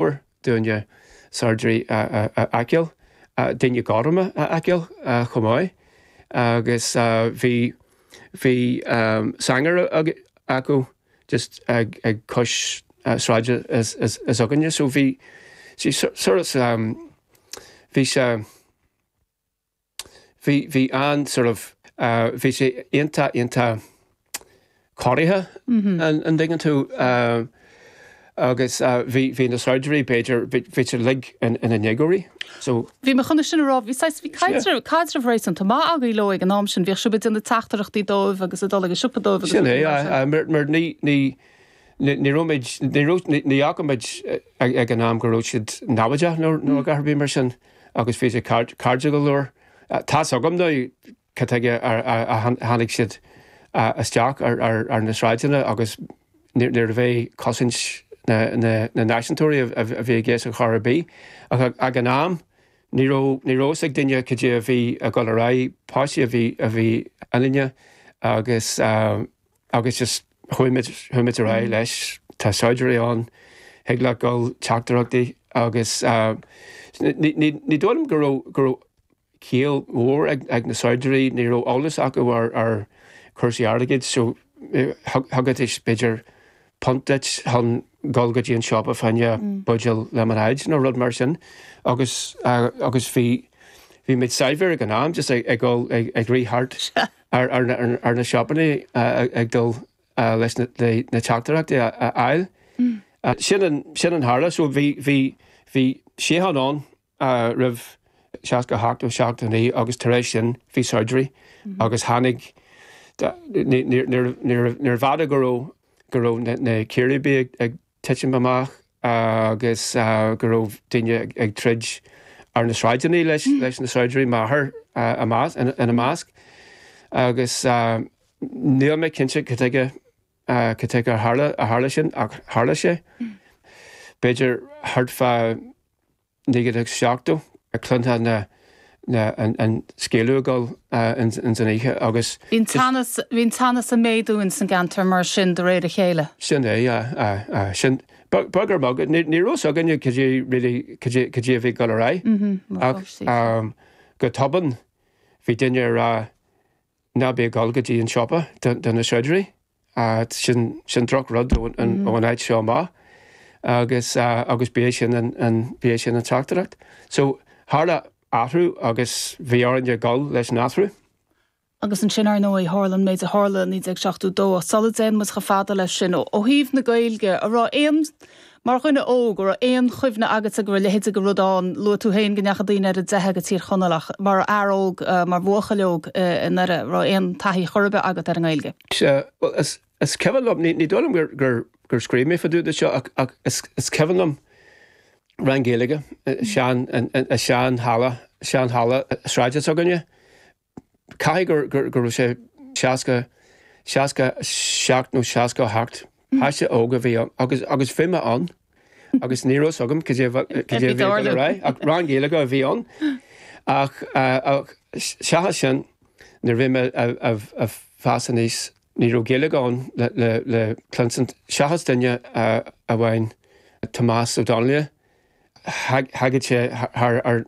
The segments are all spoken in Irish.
mór dúinne saighdiúirí a fheiceáil, daoine gorma a fheiceáil chomh maith agus bhí, bhí sanger acu just ag cois sráide s'againne so bhí sí sort of, bhí sé. bhí, bhí an, sort of, bhí sé iontach, iontach corraithe an dtuigeann tú agus bhí, bhí na saighdiúirí b'fhéidir, bhí siad uilig in a ndéagóirí so. Bhí mé chun é sin a rá, bhí saghas, bhí caidreamh, caidreamh réasúnta maith againn leo ag an am sin, bhíodh sibh ag déanamh teachtaireachtaí dóibh agus ag dul chuig an siopa dóibh agus rudaí mar sin. Sin é, mar, mar ní, ní, ní raibhimid, ní raibh, ní fhaca muid ag an am go raibh siad namhaideach nó, nó a dhath ar bith mar sin. agus bhí siad cairdiúil go leor. Tá's agam now cad tuige ar tháinig siad isteach ar na sráideanna agus níorbh é do chosaint na náisiúntóirí a bhí i gceist ar chor ar bith. Ach ag an am ní raibh fhios ag duine cad é a bhí ag dul ar aghaidh, páistí a bhí ionainne agus, Agus just chuaigh muid, chuaigh muid ar aghaidh leis, tá saighdiúirí ann, thig leat dhul teachtaireachtaí agus ní dóigh liom go raibh, go raibh ciall mhór ag na saighdiúirí, ní raibh eolas acu ar, ar chúrsaí airgid so thugaidís b'fhéidir punt duit chun dhul go dtí an siopa fá choinne buidéal lemonade nó rud mar sin agus, agus bhí, bhí muid saibhir ag an am just ag, ag dhul, ag rith thart. ar na siopaí ag dul leis na teachtaireachtaí a fháil. Sin a tharla so bhí síocháin ann roimh seasca a hocht nó seasca a naoi agus tar éis sin bhí saighdiúirí agus tháinig, níorbh fhada go raibh na círéibí ag, titim amach agus go raibh daoine ag troid ar na sráideanna leis na saighdiúirí, m'athair ina measc. Agus níl mé cinnte cad tuige ar tharla sin ach tharla sé. B'fhéidir, thart fá 1970, chluinteá na, na, an, an scaoileadh ag dul ins an oíche agus. Bhí an teannas, bhí an teannas a' méadú ins an gceantar mar sin de réir a chéile. Sin é, aye, aye, aye, sin, beag ar bheag, ní, ní raibh a fhios againne cad é really, cad é, cad é a bhí ag dul ar aghaidh. Mhm, mar pháistí. Ach um go tobann bhí duine a' rá ná bí ag dul go dtí an siopa do, do na saighdiúirí. Sin droch rud ón am seo amach agus agus b'é sin an b'é sin an teachtaireacht. So tharla athrú agus bhí orainn a dhul leis an athrú. Agus ansin ar ndóigh tharla an méid a tharla i 1972 ach sula dtéann muid chomh fada leis sin, ó thaobh na Gaeilge, a' raibh aon Mar dhuine óg, an raibh aon chuimhne agatsa go raibh leithéid de rud ann, luaigh tú féin go ndeachaigh daoine ar a dteitheadh go Tír Chonaill ach mar fhear óg, mar bhuachaill óg i nDoire, an raibh aon taithí chor ar bith agat ar an nGaeilge? Sea, bhuel, is cuimhin liom, ní dóigh liom gur scríobh mé faoi dtaobh de seo ach is cuimhin liom rang Gaeilge i sean, i sean halla, sean halla sráide s'againne, Caithfidh gur, gur, go raibh sé seasca, seasca a seacht nó seasca a hocht. Páiste óg a bhí ann agus, agus bhí mé ann agus ní raibh fhios agam cad é, cad é a bhí dul ar aghaidh ach rang Gaeilge a bhí ann ach, ach seachas sin nuair a bhí mé ag fás aníos ní raibh Gaeilge ann le, le, le cluinsint seachas duine amháin Tomás Ó Donnelly. Thagad sé thar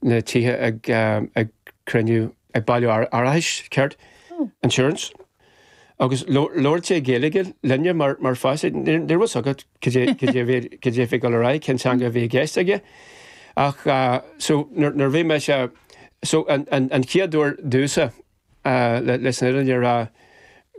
na tithe ag cruinniú, ag bailiú arachais, ceart? Insurance. Agus labhradh sé Gaeilge linne mar mar pháistí. Níor ní raibh fhios agat cad é cad é bhíod cad é bhí dul ar aghaidh, cén teanga a bhí i gceist aige. Ach so nuair nuair bhí mise so an an an chéad uair domhsa le leis an fhírinne a rá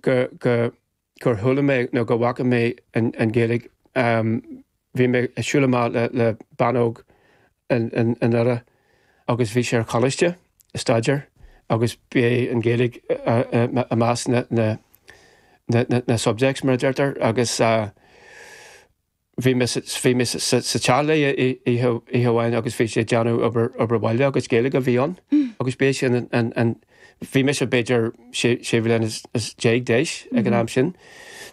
go go gur chuala mé nó go bhfaca mé an Ghaeilge. Bhí mé ag siúl amach le bean óg i nDoire agus bhí sí ar choláiste ag staidéar agus b'é an Ghaeilge i measc na subjects mar a deirtear agus bhí mé sa, bhí mé sa, sa, sa teach léi oí, oíche, oíche amháin agus bhí sí ag déanamh obair, obair bhaile agus Gaeilge a bhí ann agus b'é sin an, an, an, bhí mise b'fhéidir sé, sé bhliana 's, 's déag d'aois ag an am sin.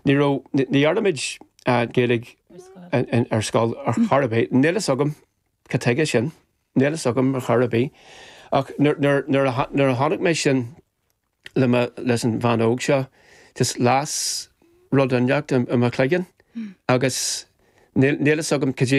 Ní raibh, ní, ní dhearna muid a'n Gaeilge Ar scoil. in, in, ar scoil ar chor ar bith. Níl fhios agam ca tuige sin, níl fhios agam ar chor ar bith. Ach nuair, nuair, nuair a tha, nuair a chonaic mé sin, le mo, leis an bhean óg seo, just las rud inteacht i mo chloigeann agus níl a fhios agam cad é,